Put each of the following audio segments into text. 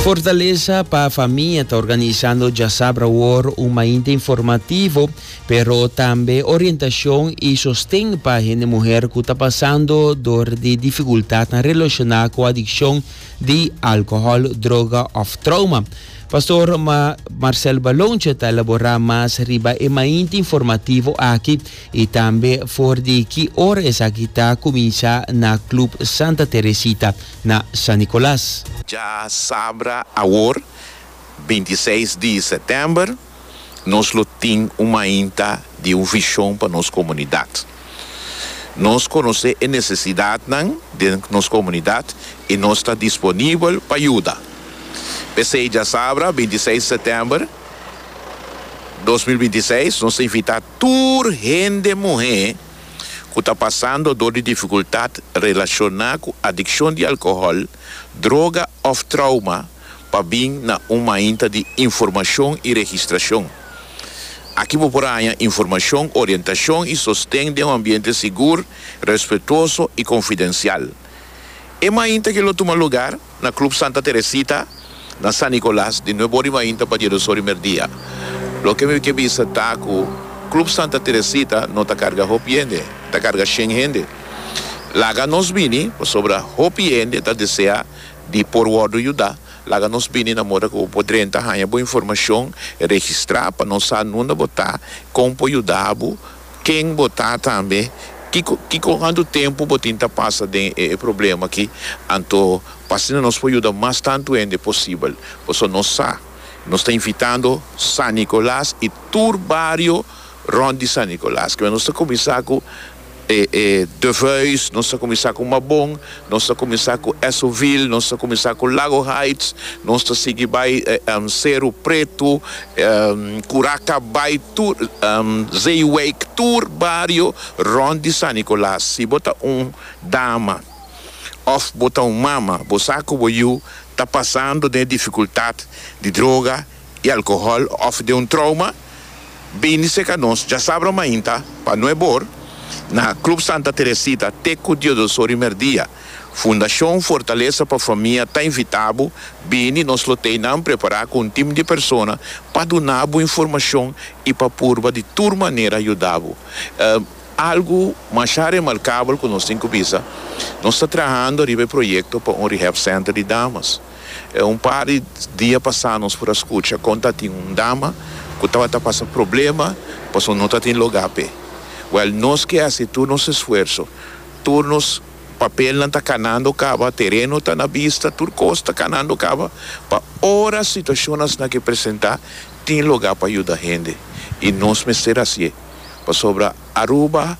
Fortalesa pa famia ta organisando djasabra awor un mainta informativo, pero tambe orientacion y sosten pa hende muher cu ta pasando door di dificultadnan relaciona cu adiccion di alcohol, droga of trauma. Pastor Marcel Balonche ta elabora mas riba e mainta informativo aki, y tambe for di ki ora esaki ta cuminsa na Club Santa Teresita na San Nicolas. Dja sabra awor, binti i seis di setember, nos lo tin un mainta di un vision pa nos comunidad. Nos conoce e necesidadnan den nos comunidad y nos ta disponibel pa yuda. P'esey dja sabra, binti i seis di setember, dos mil binti i seis, nos ta invita tur hende muhé ku ta pasando dor di difikultat relashoná ku adikshon di alkohòl, droga òf trouma pa bin na un mainta di informashon i registrashon. Aki bo por haña informashon, orientashon i sosten den un ambiente sigur, respetuoso i konfidensial. E mainta ke lo tuma lugar. Na Club Santa Teresita, na San Nicolas, di nuebe ori mainta pa dies ori merdia. Loke mi ke bisa ta ku Club Santa Teresita no ta karga hopi hende, ta karga shen hende. Laga nos bini, pasobra hopi hende ta desea di por wòrdu yuda. Laga nos bini na moda ku bo drenta haña bo informashon registrá pa nos sa nunde bo ta, kon por yuda bo. Ken bo ta tambe? Kiko kiko hantu tempu bo tin ta pasa den e e problema aki? Anto p'asina nos por yuda mas tantu hende posibel. Pasobra nos sa nos ta invitando San Nicolas i tur bario rond di San Nicolas. Kiba nos ta kuminsá ku e e Devuis, nos ta kuminsá ku Mabon, Nos ta kuminsá ku Essoville, nos ta kuminsá ku Lago Heights, nos ta sigui bai Seru Pretu, Kuraca bai tur, Zeewijk, tur bario rònt di San Nicolas. Si bo ta un dama òf bo ta un mama, bo sa ku bo yu ta pasando den e difikultat di droga y alcohol of den un trauma bini seca nos dja sabra mainta pa nue bor na club Santa Teresita te cu dios dos ora y merdia fundacion fortalesa pa famia ta invitabo bini nos lo tey nan prepara cu un team di persona pa dunabo informacion y pa purba di tur manera ayudabo algo masha remarcable cu nos tin cu bisa nos ta trahando riba e proyecto pa un rehab center di damas. E un par di dia pasá nos por a skucha kon ta tin un dama ku tabata pasa problema pasobra no ta tin lugá p'e. Wèl, nos ke hasi tur nos esfuerso, tur nos papelnan ta kanando kaba, tereno ta na bista, tur kos ta kanando kaba pa ora situashon asina ke presentá tin lugá pa yuda hende. I nos mester hasié pasobra Aruba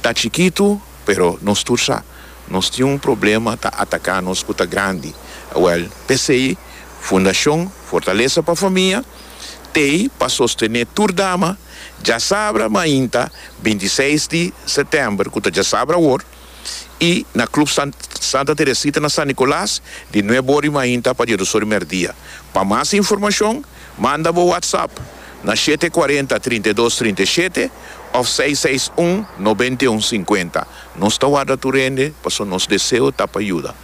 ta chikitu pero nos tur sa. Nos tin un problema ta ataká nos ku ta grandi. Awèl, p'esei Fundashon Fortalesa pa Famia, tei pa sostené tur dama djasabra mainta binti seis di setember, ku ta djasabra awor, i na Club Santa Teresita na San Nicolas di nuebe ora di mainta pa dies dos ora di merdia. Pa mas informashon manda bo WhatsApp na shete kuarenta trinta i dos trinta i shete òf seis seis un nobenta i un sinkuenta. Nos ta warda tur hende pasobra nos deseo ta pa yuda.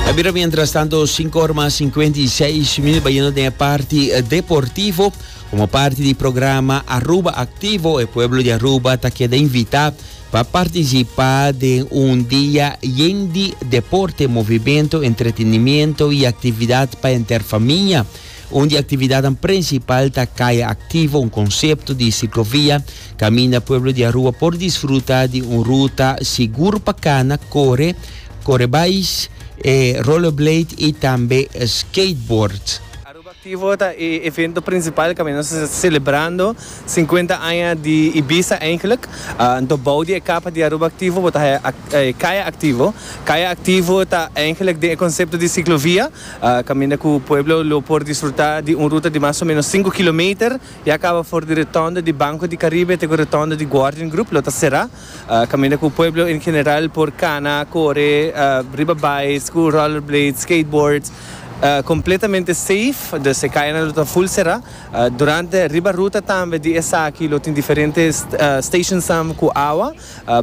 A bira mientras tanto sinku or mas sinkuenta i seis minuut. Bayendo den e parti deportivo. Komo parti di programa Aruba Aktivo e pueblo di Aruba ta keda invitá pa partisipá den un dia yen di deporte, movimento, entretenimiento i aktividat pa henter famia. Un di aktividatnan prinsipal ta Kaya Aktivo, un konsepto di siklovia kaminda pueblo di Aruba por disfruta di un ruta sigur pa kana, kore, kore bais, rollerblade i tambe skateboard. Club Activo ta e evento principal caminda nos ta celebrando cincuenta aña di Ibiza eigenlijk. Anto bao di e capa di Aruba Activo bo ta haya e Kaya Activo. Kaya Activo ta eigenlijk den e concepto di ciclovia caminda cu pueblo lo por disfruta di un ruta di mas o menos cinco kilometer ya caba for di Rotonde di Banco di Caribe te cu Rotonde di Guardian Group lo ta cera. Kaminda ku pueblo en general por kana, kore, riba bais, ku rollerblades, skateboards, kompletamente seif, dus e kayanan lo ta full será. Durante, riba ruta tambe di esaki lo tin diferente stationsnan ku awa,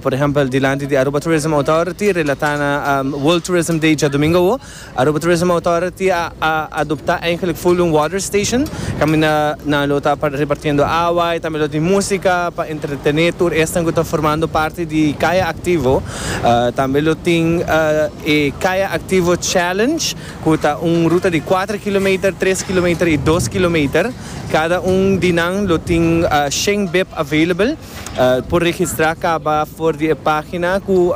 por ehèmpel dilanti di Aruba Tourism Authority, relatá na World Tourism Day djadumingu awo. Aruba Tourism Authority a adopta eigenlik full un water station kaminda nan lo ta repartiendo awa y tambe lo tin musica pa entretene tur esnan cu ta formando parti di Kaya Activo. Tambe lo tin e Kaya Activo Challenge cu ta un ruta di cuater kilometer, tres kilometer y dos kilometer. Cada un di nan lo tin shen bib available. Por registrá kaba for di e página ku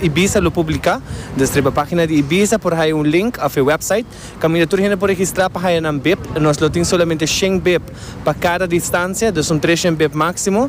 Ibiza lo publiká. Desha riba página di Ibiza por haya un link òf e wèpsait kaminda tur hende por registrá pa haya nan bip. Nos lo tin solamente shen bip pa kada distansia, dus un tres shen bip máksimo.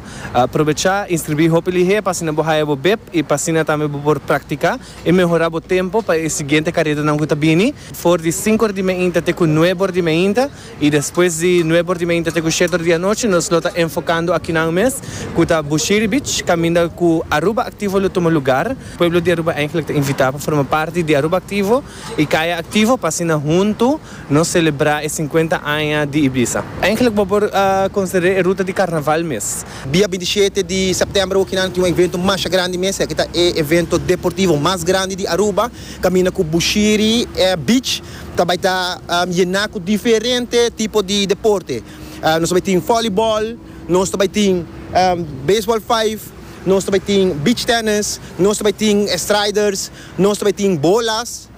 Probechá inskribí hopi lihé pa asina bo haya bo bip i pa asina tambe bo por praktiká i mehorá bo tempu pa e siguiente karetanan ku ta bini for di sinku òr di mainta te ku nuebe òr di mainta. Y despues di nueve por di meinta te cu shete or di anochi nos lo ta enfocando akinan mes cu ta Bushiri Beach caminda cu Aruba Activo lo tuma lugar. Pueblo di Aruba eigenlijk ta invita pa forma parti di Aruba Activo y Kaya Activo pa asina hunto nos celebra e cincuenta aña di Ibiza. Eigenlijk bo por considera e ruta di Carnaval mes. Dia binti shete di september okinan lo tin un evento masha grandi mes, esaki ta e evento deportivo mas grandi di Aruba caminda cu Bushiri Beach. Ta bai ta yená ku diferente tipo di deporte. Nos ta bai tin vòleibòl, nos ta bai tin beisbòl vijf, nos ta bai tin beach tennis, nos ta bai tin striders, nos ta bai tin bolas,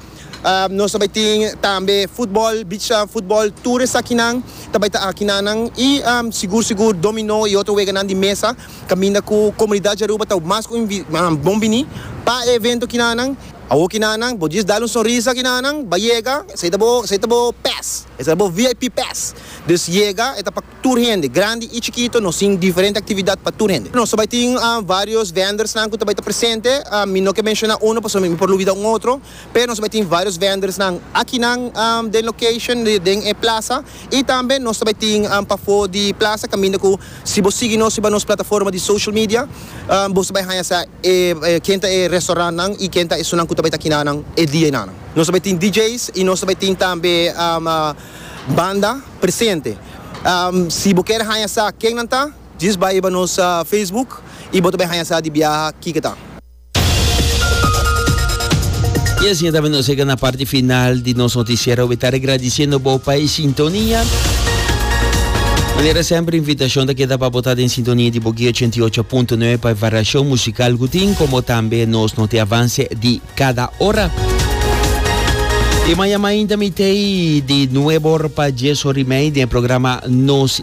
nos ta bai tin tambe futbòl, beach futbòl, tur esakinan ta bai ta akinan nan i sigur sigur dominó i otro weganan di mesa kaminda ku komunidat Yaruba ta mas ku bon biní pa e evento kinan nan. Awo kinanan, bo djis dal un sonrisa kinanan, ba yega, esei ta bo, esei ta bo pass, esei ta bo VIP pass, dus yega, e ta pa tur hende, grandi i chikito, nos tin diferente aktividat pa tur hende. Nos ta bai tin varios vendersnan ku ta bai ta presente, mi no ke menshona uno pasobra mi por lubida un otro, pero nos ta bai tin varios vendersnan akinan den location, den e plasa. Y tambe nos ta bai tin pafó di plaza caminda cu si bo sigui nos riba nos plataforma di social media bo ta bai haña sa e ken ta e restaurantnan y ken ta esunnan cu ta bai ta kinanan e dia y nanan. Nos ta bai tin DJ's y nos ta bai tin tambe banda presente. Si bo kier haña sa kennan ta djis bai riba nos Facebook y bo ta bai haña sa di biaha kico ta. Y asina tambe nos llega na parti final di nos noticiero. We ta regradiciendo bo pa e sintonia. Manera sempre invitacion ta queda pa bota den sintonia di Bogi 88.9 pa e variacion musical gutin como tambe nos note avance di cada hora. Y maya mainta mitei di nuebor pa 10 hori mei den programa Nos